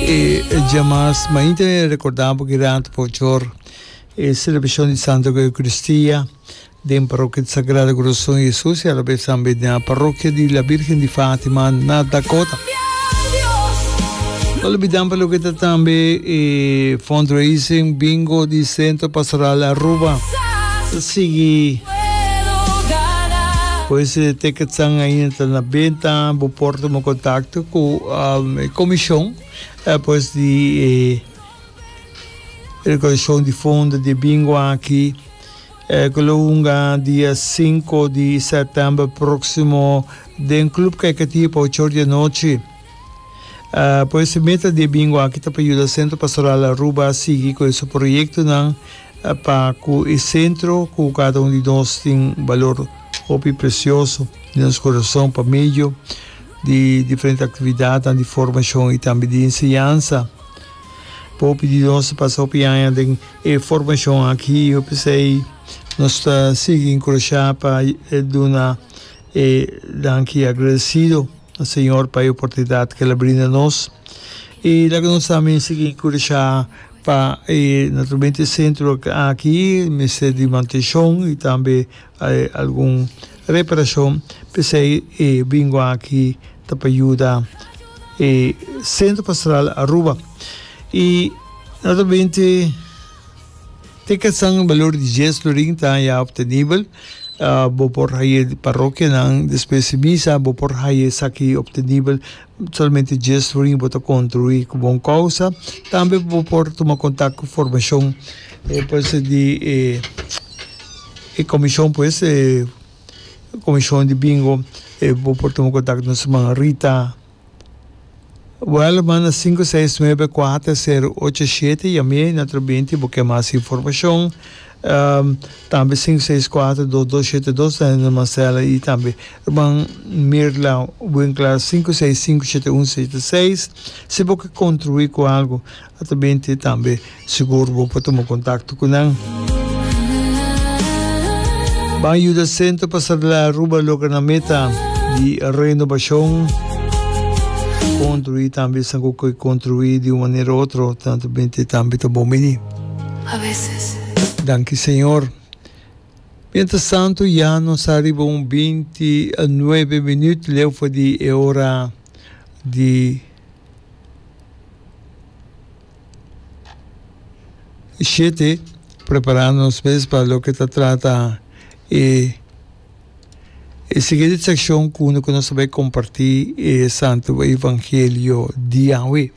E djamas mainta e recordá bo Gerardo Pochor e celebracion di Santa Eucaristia den Parroquia di Sagrado Corazon di Jesus y alabes tambe na Parroquia di la Virgen di Fatima na Dakota. No olbidan pa loke ta tambe e fundraising bingo di Centro Pastoral Aruba. Sigui pues tickets ainda ta na benta, bo por tuma contacto cu e komishon pues di e rekaudashon di fondo di bingo aki ku lo hunga dia sinku di sètèmber próksimo den Club Caikatí pa ocho or di anochi. Pues e meta di e bingo aki ta pa yuda Sentro Pastoral Aruba sigui ku e su proyektonan pa ku e sentro ku kada un di nos tin balor hopi presioso den nos kurason pa medio di diferente actividadnan di formacion y tambe di enseñansa. Hopi di nos a pasa hopi aña den e formacion aki y hopi esey nos ta sigui encurasha pa duna e danki agradecido na Señor pa e oportunidad cu el a brinda nos. Y laga nos tambe sigui encurasha pa e naturalmente e centro aki mester di mantencion y tambe. hay algun reparacion pesey e bingo aki ta pa yuda e centro pastoral Aruba y no ta binte te kesan balor di dies florin ta ya obtenibel bo por haye di parokianan despues di misa bo por haye esaki obtenibel Solamente djes ruin bo ta contribui cu bon causa. Tambe bo por tuma contact cu formacion puede ser di e comision pues, comision di bingo, bo por tuma contact cu nos human Rita Welleman na sinku seis nuebe kuater seru ocho shete, yam'e na otro beinti bo kier mas informacion. tambe sinku seis kuater dos dos shete dos ta hende Marcela y tambe Rman Mirla Winkler sinku seis sinku shete un shete seis si bo ke kontribui ku algu ata bin te tambe sigur bo por tuma kontakto ku nan. Ban yuda Sentro pa Sardela y Aruba logra nan meta di renobashon kontrui tambe esnan ku ke kontrui di un manera otro ta bin te tambe ta bon bini. a veces. Danki Señor. Mientras tanto ya nos ta riba un binti nuebe minuut leu for di e ora di shete. Prepara nos mes pa loke ta trata e e siguiente seccion cu nos ta bay comparti e Santo Evangelio di Yahweh.